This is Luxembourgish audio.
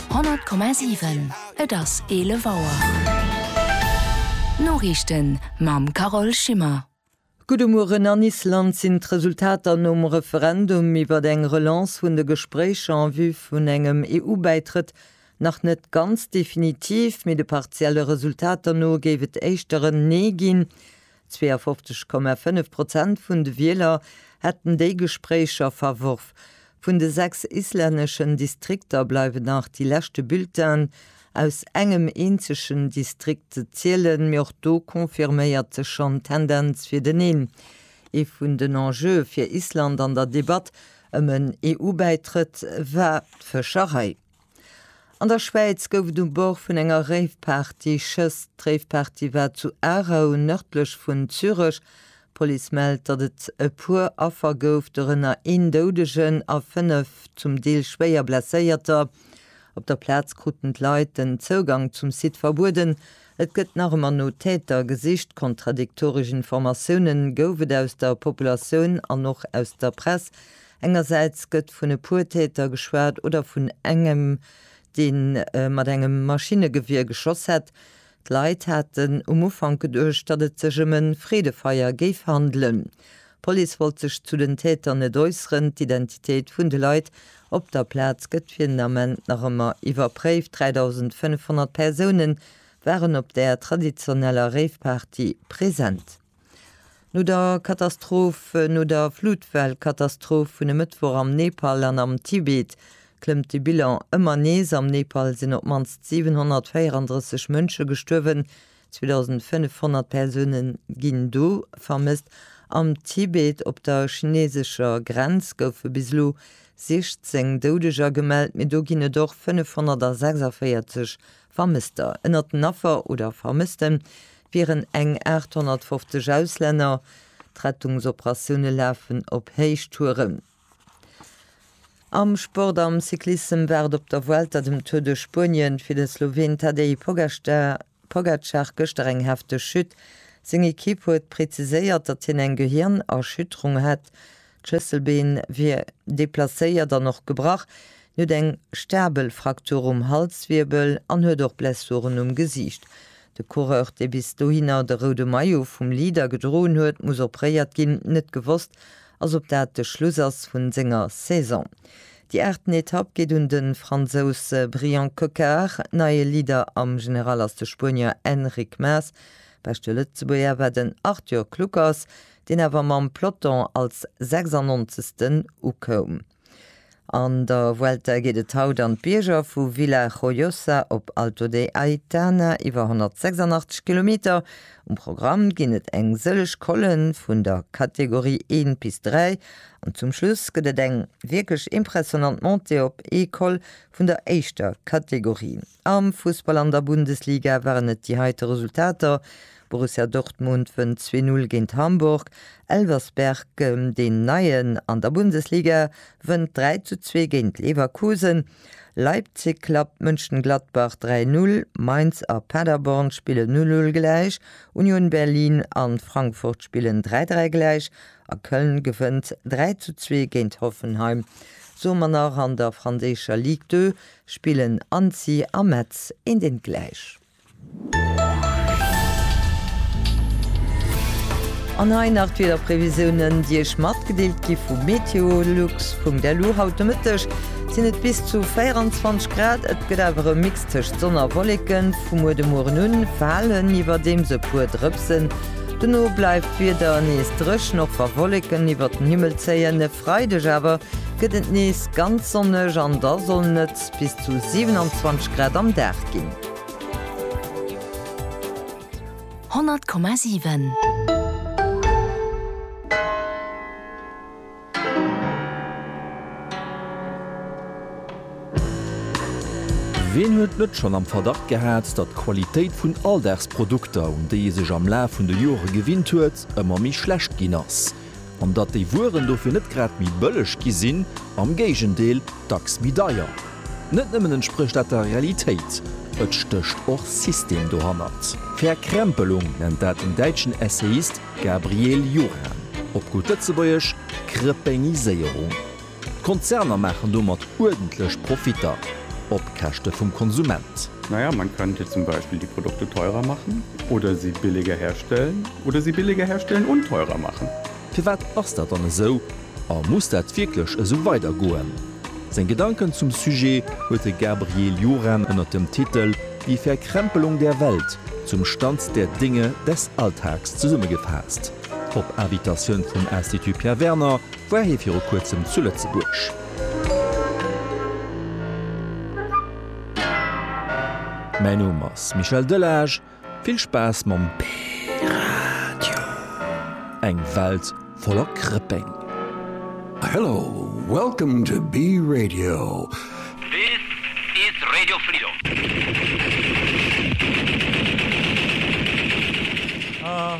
100,7 Et ass 11 Auer. D'Noriichten mam Carole Schimmer. Gudde Mueren. An Island sinn d'Resultater nom Referendum iwwert eng Relance vun de Gespréicher en vue vun engem EU-Bäitrëtt nach net ganz definitiv, mee de partielle Resultater no géif et éischter en Nee ginn. 52,5 Prozent vun de Wieler hätten déi Gespréicher verworf. Vun de sechs islänneschen Distrikter bleiwen nach déi leschte Bulletinen aus engem eenzegen Distrikt ze zielen, mee och do confirméiert sech schonn d'Tendenz fir den Een. Ee vun den Enjeue fir Island an der Debatt ëm en EU-Bäitrëtt war d'Fëscherei. An der Schwäiz gouf et um Bord vun enger Rave-Party Schëss. D'Rave-Party war zu Aarau, nërdlech vun Zürech. D'Police mellt, datt et e puer Affer gouf, dorënner een Doudegen a fënnef zum Deel schwéier Blesséierter. Op der Plaz kruten d'Leit den Zougang zum Site verbueden. Et gëtt nach ëmmer no Täter gesicht. Kontradiktoresch Informatioune gouf et aus der Populatioun an och aus der Press. Engersäits gëtt vun e puer Täter geschwat oder vun engem, dee mat engem Maschinnegewier geschoss hätt. D'Leit haten um Ufank geduecht, datt et sech ëm e Freedefeier géif handelen. D'Police wollt sech zu den Täter net äusseren. D'Identitéit vun de Leit op der Plaz gëtt fir den Ament nach ëmmer iwwerpréift. 3.500 Persoune waren op där traditioneller Rave-Party present. No der Katastroph, no der Flutwell-Katastroph vun e Mëttwoch am Nepal an am Tibet, klëmmt de Bilan ëmmer nees. Am Nepal sinn op d'mannst 734 Mënsche gestuerwen, 2.500 Persoune ginn do vermësst. Am Tibet, op der chineesescher Grenz, goufe bis elo 16 Doudeger gemellt, mee do ginn et och 546 Vermësster, Ënnert den Affer oder Vermësste wieren eng 850 Auslänner. D'Rettungsoperatioune lafen op Héichtouren. Am Sport, Am Cyclissem war et op der Vuelta, dem Tour de Spuenien, fir de Sloween Tadej Pogacar gëschter eng hefteg Chute. Seng Ekipp huet preziséiert, datt hien eng Gehirnerschütterung hätt. D'Schlësselbeen wier deplacéiert an och gebrach. Hien huet eng stabel Fraktur um Halswirbel an huet och Blessuren um Gesiicht. De Coureur, dee bis dohinner de roude Maillot vum Leader gedroen huet, muss operéiert ginn. Net gewosst ass, ob dat de Schluss ass vu senger Saison. Déi aachten Etapp geet un de Fransous Bryan Coquard. Neie Leader am General ass de Spuenier Enric Mas. Beschte Lëtzebuerger war den Arthur Kluckers. deen awer mam Peloton als 96. ukoum. An der Vuelta geet et haut an d'Bierger, vu Villajoyosa op Alto de Aitana, iwwer 186 Kilometer. Um Programm ginn et eng sëlleg Colle vun der Kategorie 1 bis 3 an zum Schluss gëtt et eng wierklech impressionant Montée op ee Col vun der éischter Kategorie. Am Fussball an der Bundesliga waren et déi heite Resultater, Borussia Dortmund wënnt zwee Null géint Hamburg, Elversberg, deen Neien an der Bundesliga, wënnt dräi zu zwee géint Leverkusen, Leipzig klappt Mönchengladbach dräi Null, Mainz a Paderborn spillen Null Null gläich, Union Berlin an Frankfurt spillen dräi dräi gläich a Köln gewënnt dräi zu zwee géint Hoffenheim. Soe mer nach an der franséischer Ligue 2, Spillen Annecy a Metz een deen gläich. An hei nach d'Wiederprevisiounen déi Iech matgedeelt gi vu Meteolux. Punkt Elo haut de Mëtteg sinn et bis zu 24 Grad, et gëtt awer e Mix tëscht Sonn a Wolleken. Vu muer de Mueren un falen iwwerdeems e puer Drëpsen, dono bleift d'Wieder nees dréchen och wa Wolleken iwwert den Himmel zéien. E Freideg awer gëtt et nees. Ganz sonneg an da sollen et bis zu 27 Grad am Dag ginn. 100,7. Ween huet net schonn am Verdacht gehat, datt d'Qualitéit vun Alldagsprodukter, un déi ee sech am Laf vun de Jore gewinnt huet, ëmmer méi schlecht ginn ass? an datt déi Wueren dofir net grad méi bëlleg gi sinn, am Géigendeel, dacks méi deier. Net nëmmen entsprécht dat der Realitéit, et stécht och System dohannert. Verkrempelung nennt dat den däitschen Essayist Gabriel Juran, op gutt Lëtzebuergesch, Krëpéngiséierung. D'Konzerner maachen domat uerdentlech Profitter op Käschte vum Konsument. Na ja, man könnte zum Beispiel die Produkte teurer machen oder sie billiger herstellen oder sie billiger herstellen und teurer machen. Firwat ass dat dann esou a muss dat wierklech esou weidergoen? Seng Gedanken zum Sujet huet de Gabriel Juran ënner dem Titel Die Verkrempelung der Welt, Zum Stand der Dinge des Alltags zesummegefaasst op Invitatioun vum Institut Pierre Werner, War hie viru kuerzem zu Lëtzebuerg? Mäin Numm ass Michel Delage, vill Spaass mam P-Radio! Eng Welt voller Krëpeng! Hello, welcome to B-Radio. This is Radio Freedom. Ah.